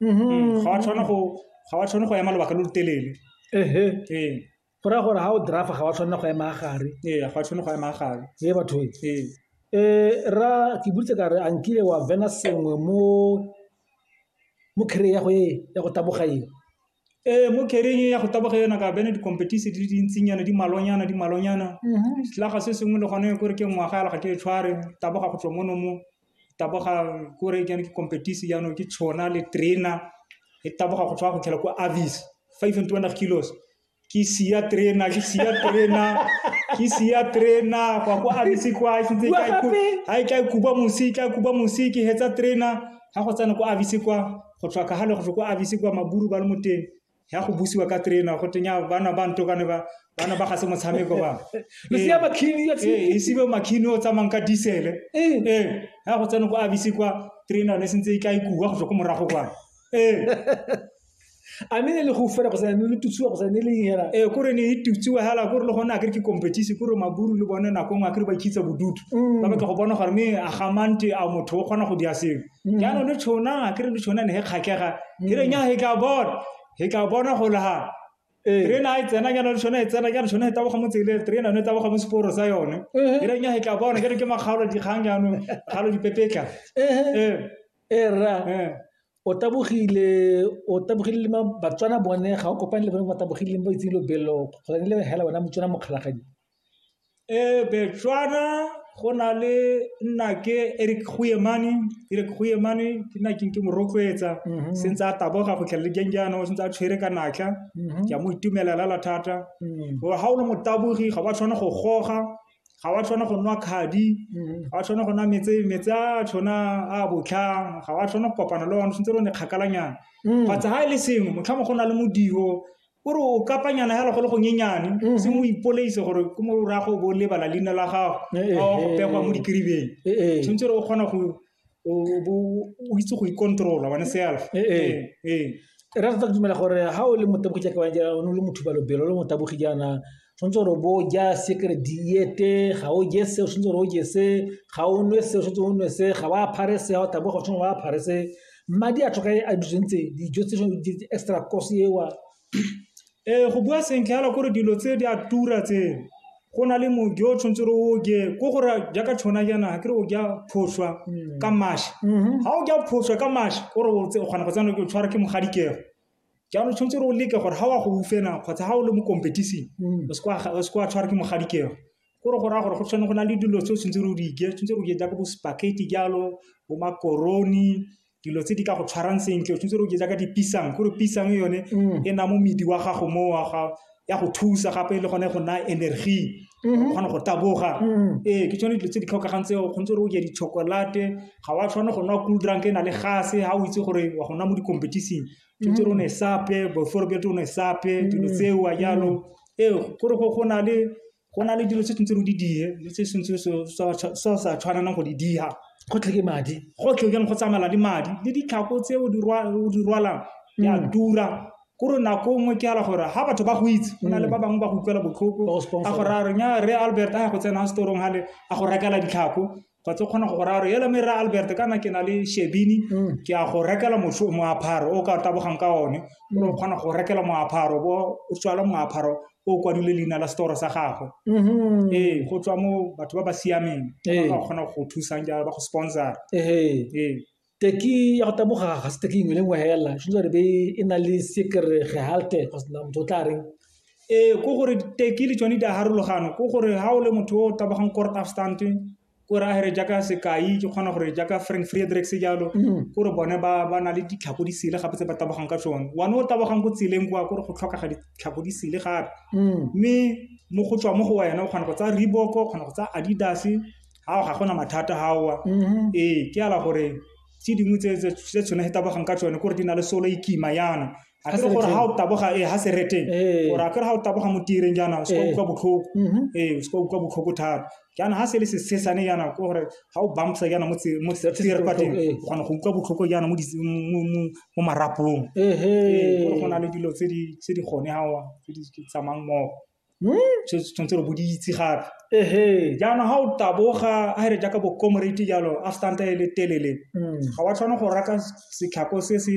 Mhm. ga wa tshwana go ga wa tshwane go ema lobaka lo lo telele ehe ee go raya gore ga o drafa ga wa tshwanela go ema gare ee ga wa tshwane go ema gare ee batho e ee Eh, ra ke buditse ka re a nkile wa vena sengwe mo mo kry ya go e ya go taboga e ee mo kereng ya go taboga yona ka bene di-competition di le dintsinyana di malonyana di malonyana selaga se sengwe le gone kore ke ngwaga ya lega ke e tshware taboga go tswa mono mo tabogang ko re ke ke competition jaanong ke tshona le trainer e taboga go tswa go tlhela ko avis 500 kilos ke sia trainer ke sia trainer ke sia trainer kwa go avis kwa ke ntse ka ku ha ke kuba musi ka kuba musi ke hetsa trainer ha go tsana ko avis kwa go tswa ka hale go go avis kwa maburu ba le moteng ya go busiwa ka trainer go tenya bana ba ntokane ba bana ba ga se motshameko ba losea makhini ya e sibe makhini o tsamang ka diesel eh eh ha go tsena go abisi kwa trainer ne sentse e ka ikuwa go tswa go morago kwa eh a me ne le go fela go sa ne le tutsiwa go sa ne le hela eh kore ne e tutsiwa hela kore le gona a ke competition kore maburu le bone nako ngwe a kere ba ikitsa bodutu mm. ba batla go bona gore me a gamante a motho o kgona go dia sengwe mm. jaanong le tshona ke re le tshona ne he kgakega ke re nya he tla bona he tla bona go laga terena a e tsena jaana le tshone e tsena jaana tshone e taboga mo tseleng terena yone e taboga mo seporo sa yone e re nya e tla bona ke re ke makgaolo dikgang jaanong kgalo dipepetla e rra o tabogile o tabogile le batswana bone ga o kopane le bone ba tabogile ba itseng lobelo kgotsa ne le hela bona motswana mokgalagadi Betswana go na le nnake e re ke nna ke mo rotloetsa setse a taboga go tlha le jang jaana o santse a tshwere ka natla ke a mo itumelela la thata gore ga o le mo taboge ga ba tshwane go goga ga wa tshwanela go nwa kgadi ga tshwanela go nwa metse metsi a tshwana a botlhano ga wa tshwanela go kopana le one santse re ne kgakala nyana kgotsa ga e le sengwe motlhomongwe go na le modumo O re o kapanyana hela go le go nyenyane, mm-hmm. se mo ipoleise gore ke mo ra go bo lebala leina la gago, ga eh, eh, o go eh, pegwa mo dikiribeng. Tshwanetse re o kgona go o itse go ikontrola one self. Re rata go dumela gore ha o le motabogi jaaka o le motho ba lobelo, o le motabogi jaana tshwanetse gore bo ja secret diete ga o je se o tshwanetse gore o je se ga o nwe se o tshwanetse o nwe se ga o aphare se ga o tabo go tshwanetse o aphare se madi a tlhoka a ditsentse dijo tse di extra cost ewa ee go bua sentle yalo gore dilo tse di a tura tse go na le mojo o tshwanetse gore o je ko gore jaaka tshwana jaana ga ke re o ja phošwa ka mašwi ga o ja phošwa ka mašwi o re o kgona go tsena ke o tshwara ke mogadikego jaanong tshwanetse re o leke gore ga wa go ufena kgotsa ga o le mo competition mm. o se kwa tshware ke mogadikego ko re go raya gore go tshwane go na le dilo tse o tshwanetse re o di ke tshwanetse re o ke jaaka bo spaghetti jalo bo makoroni dilo tse di ka go tshwarang sentle o tshwanetse re o ke jaaka dipisang gore pisang yone mm. e na mo medi wa gago mo wa gago ya go thusa gape le gone go naya energy o mhm. kgona go taboga mhm. ee ke tsone dilo tse di tlhokagang tseo kgontse re o ja di-chocolate ga wa tshwane go nwa cool drunk e na le gase ga o itse gore wa go nwa mo di-competition tshwanetse re o ne mhm. sape before bjate o ne sape dilo tseo a jalo ee gore go na le Go na le dilo tse tshwanetseng o di dire le tse o sa tshwanelang go di dira. Go tlhoke madi. Go tlhokeng go tsamaela le madi, le ditlhako tse o di rwalang di a tura. Ke gore nako nngwe ke fela gore ga batho ba go itse, go na le ba bangwe ba go utlwela botlhoko, a go raya gore Rre Albert a ya go tsena storong fale, a go rekela ditlhako. ga tse kgona go go raya gore ele me ra albert kana ke na le shebini Mm. ke a go rekela mosho- moapharo o ka tabogang ka one o re o kgona go rekela moapharo bo o tswala moapharo o o kwadile leina la setoro sa gago Mhm. ee go tswa mo batho ba ba siameng ba Ee. ba kgona go go thusang jalo ba go sponsora Ehe. ee teki ya go taboga ga se teki nngwe le nngwe hela tshwanetse gore be e na le sekere gehalte kgosna motho o tla reng ee ko gore teki le tsone di a harologano ko gore ga o le motho o tabogang court afstand ko re agere jaaka sekai ke kgona gore jaaka frank frederick se jalo mm. ko re bone ba na le ditlhako di sele gape tse ba tabogang ka tsone one o tabogang ko tseleng kwa ko re go tlhokega ditlhako di sele gape mm. mme mo go tswa mo go wena o kgona go tsa reebok o kgona go tsa adidas Ao ga gona mathata ao. Mhm. Ee, ke ala gore tse dingwe tse tse tse tshone he tabogang ka tsone kore di na le solo e kima yana a kere gore ga o taboga e ha se reteng ee. gore a kere ga o taboga mo tireng jaana o se ka ee. utlwa botlhoko mhm. ee o se ka utlwa botlhoko thata jaana ga se le sesesane yana ke gore ga o bampsa yana mo tere kwa teng ee. o kgona go utlwa botlhoko yana mo marapong gore go na le dilo tse di gone gawa tse di tsamang mmogo Hmm? se tshwanetse re boditse gape ehe jaanong ga o taboga a re jaaka bo comrade jalo a stanta e le telele hmm. ga wa tshwana go raka setlhako se se